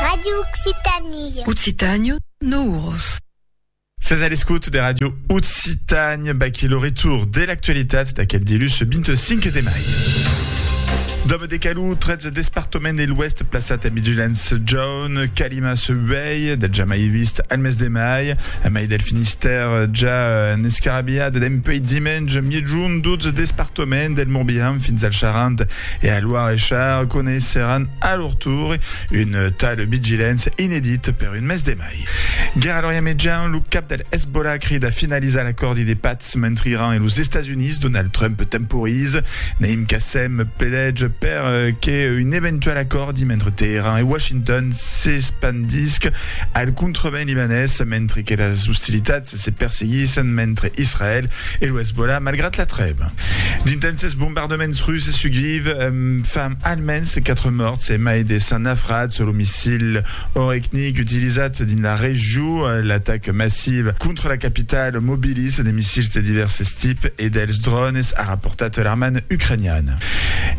Radio Occitanie. Occitània, Nouros. Ses a l'escout de Radio Occitània, baquí lo retour de l'actualitat d'aquel dilhus 25 de mai. Dòme de Calou, 13 despartament de l'Ouest plaçat en vigilància jaune, calima se uèi, del ja mai vist al mes de mai, a mai del Finistère ja en escarabiat d'empèi dimenge, miègjorn 12 despartament del Morbihan fins al Charente, E a Loire e Char coneisseràn a lor tour un tal Bigilens inedit per un mes de mai. Gera Lorient Mejan, lo cap del Hezbollah crida finalizar l'acòrdi de patz mentre Iran e los Estats Units, Donald Trump temporize. Naim Qassem pledètz per que un eventual acòrdi mentre Teheran e Washington s'espandisc al contrevent libanés mentre que las ostilitats se perseguissen mentre Israèl e lo Hezbollah malgrat la trèva. D'intènses bombardaments russes sus Kyiv fan almens 4 mòrts e mai de 100 nafrats. Lo missil Orekhnik utilizat dins la region, l'ataca massiva contra la capitala mobiliza de missils de divèrses tips e dels drònes, a raportat l'armada ucraniana.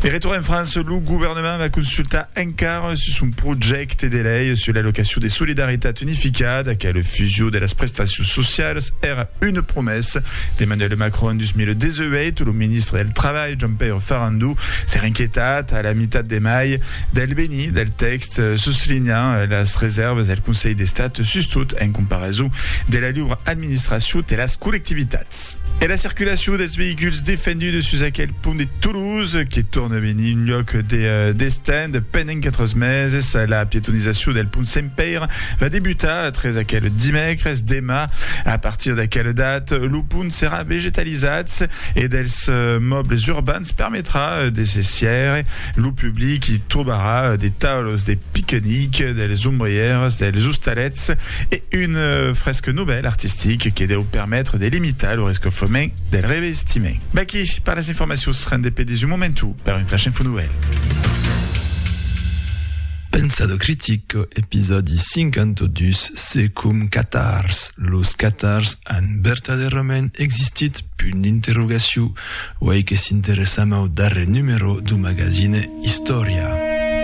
De retorn en França, lo governament va consultar encara sus un projècte projècte de lei sus l'allocacion de solidaritat unificada qu'a la fusion de las prestacions socialas èra una promesa d'Emmanuel Macron en 2018. Lo ministre del Trabalh, Jean-Pierre Farandou, s'èra inquietat a la mitat de mai del benir del tèxt, soslinhant las resèrvas del Conselh d'Estat, sustot en comparason de la liura administracion de las collectivitats. Mat. E la circulacion dels veïculs defendudes sus aquel pont de Toulouse, que torne a venir un lloc de destin de pendent 4 meses. La pietonizacion del pont Sent Pèire va debutar tres aquel dimècres. Demà, a partir d'aquela data, lo pont serà vegetalizat e dels mòbles urbans permetrà de se sièire. Lo public i trobarà de taules de piquenic, dels ombrièrs, dels ostalets, E un fresc novèl artistic que deu permetre de limitar lo rescofrement del revestiment. V'aquí per las informacions, rende pedis un momentu per un flash info novèl. Pensado critico, episòdi 52, Se com catars, los catars an vertadèrament existit? punt d'interrogacion, uèi que s'interessam au darrèr numero dau magazine Istòria.